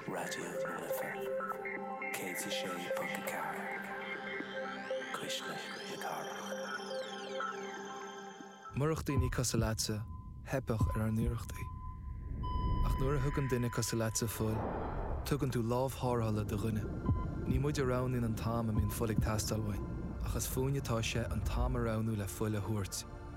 Raidió na Life 106.4, cuisle na cathrach. Murach daoine cosúil leatsa, theipfeadh ar ár n-iarrachtaí. Ach nuair a thugann duine cosúil leatsa fuil, tugann tú lámh tharrthála do dhuine. Ní muid a roghnaíonn an t-am a mbíonn fuil ag teastáil uainn, ach is fúinne atá sé an t-am a roghnú le fuil a thabhairt.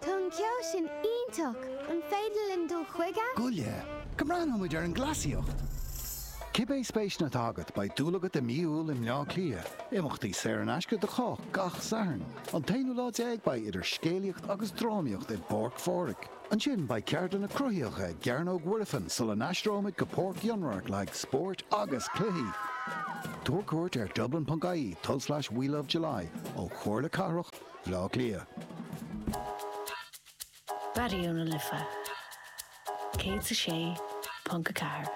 Tá an ceol sin iontach! An féidir linn dul chuige? Gabh i leith, go mbreathnóidh muid ar an gcleasaíocht! Cibé spéiseanna atá agat, beidh dúil agat i mí Iúil i mBleá Cliath. Imeachtaí saor in aisce do chách gach Satharn. An t-aonú lá déag beidh idir scéalaíocht agus drámaíocht i bPáirc Phádraig. Ansin beidh ceardlanna cruthaitheacha i gCearnóg Mhuirfean sula n-aistreoimid go Páirc Fhionnradhairc le haghaidh spóirt agus cluichí. Tabhair cuairt ar dublin.ie tul-slais we love july ó Chomhairle Cathrach. Bleá Cliath. Raidió na Life 106.4.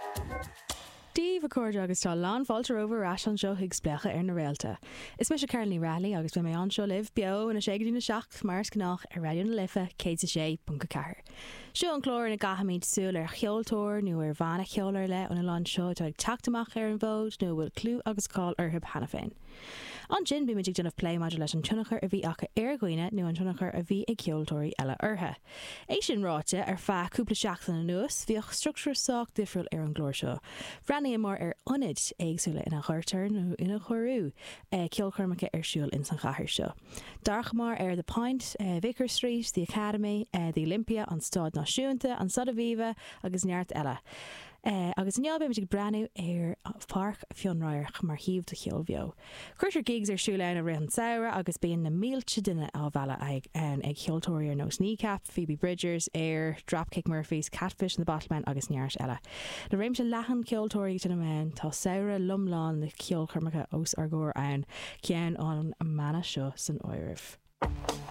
Dia daoibh, a chairde, agus tá lán fáilte romhaibh ar ais anseo chuig Spléachadh ar na Réalta. Is mise Carolyn Ní Raghallaigh agus beidh mé anseo libh, beo, óna sé go dtína seacht, mar is gnách, ar Raidió na Life 106.4. Seo an clár ina gcaithimid súil ar cheoltóir nó ar bhanna ceoil ar leith ón oileán seo atá ag teacht amach ar an bhfód nó a bhfuil clú agus cáil orthub cheana féin. Ansin bíonn muid ag déanamh plé maidir leis an tionchar a bhí acu ar dhaoine nó an tionchar a bhí ag ceoltóirí eile orthu. É sin ráite, ar feadh cúpla seachtain anuas bhíodh structúr sách difriúil ar an gclár seo. Bhreathnaíomar ar ionaid éagsúla ina gcuirtear, nó inar cuireadh, ceolchoirmeacha ar siúl ins an chathair seo. D'amharcamar ar The Point, Vicar Street, The Academy, The Olympia, an Staid Náisiúnta, an Staid Aviva agus neart eile. é agus inniu beimid ag breathnú ar Pháirc Fionnradharc mar shuíomh do cheol bheo. Cuirtear gigs ar siúl ann i rith an tsamhraidh agus bíonn na mílte duine á mealladh ann ag ceoltóirí ar nós Kneecap, Phoebe Bridgers, Air, Dropkick Murphys, Catfish and the Bottlemen agus neart eile. Le réimse leathan ceoltóirí ag seinm ann, tá samhradh lomlán le ceolchoirmeacha os ár gcomhair ann, ceann ón mbanna seo san áireamh.